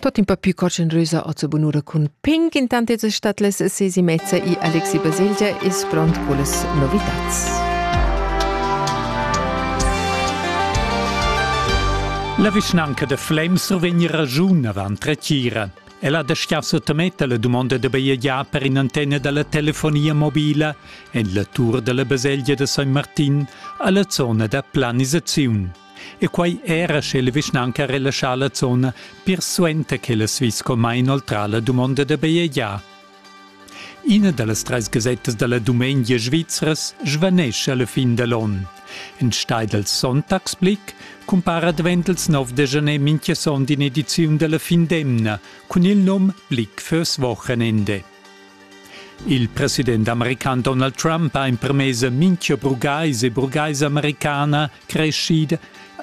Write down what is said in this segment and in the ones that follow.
Tot in pa più coccenrusa o sa bunura cun Pink, intant es stat les sesi mezza i Alexi Baselgia es front cullas novitats. La vischnanca de Flem survegn ragiun avant retira. Ella de Schiasso temetta la dumonda de bajegiar per in antenne dalla telefonia mobila en la tour dalla baselgia de San Martin alla zona da planisaziun. E quei era sche la vischnanca relaschà la zona pir suenter che la Swisscom ha inoltrà la dumonda da bajegiar. Ina da las trais gasettas da la dumengia svizras svanescha la fin da l'onn. Enstagl dals Sonntagsblick cumpara advent il 9 de janer mintga sonda in'ediziun dalla fin d'emna cun il num Blick fürs Wochenende. Il president american Donald Trump ha empermess a mintga burgais e burgaisa americana creschida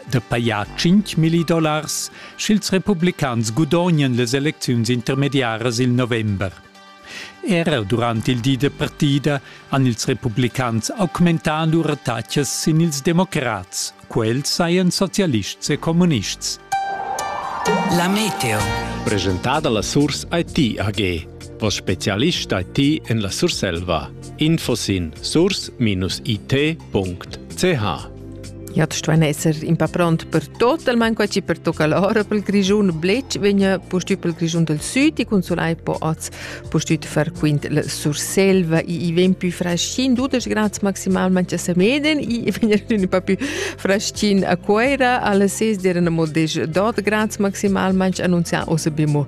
de paia 5.000 dollars, sch'ils republicans gudognen les elecziuns intermediaras il november. Era durant il di de partida han ils republicans augmentà lur attacas sin ils democrats, quels sajan socialists e comunists. La Meteo. Presentada la Source IT AG. O specialista ti en la Surselva. Info sin source-it.ch Ja, tu stuein esser in pa pront per totalmein quei per tocca l'ora pel Grischun Blec vegna pustüt pel Grischun del Süd e consolai po oz pustüt far quint la Surselva e i ven più fraschin dudesch grads maximalmente a Semeden e vegna un pa più fraschin a Cuera alle 6 dera modeix 12 grads maximalmente annunzià o se bemo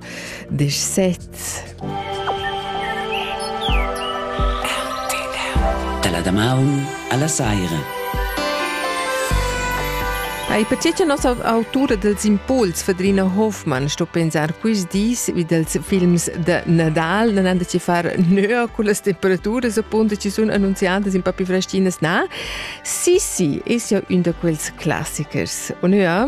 disch sez. Da la damaun alla saira. Ei perché che nossa autura dels impuls, Fedrina Hofmann, sto pensar quist dis wie dels films de Nadal, non han da ci far nöa con las temperaturas appunto ci sun annunziadas in papi fraschinas na. Sì, sì, es ja un da quels classichers. Und ja,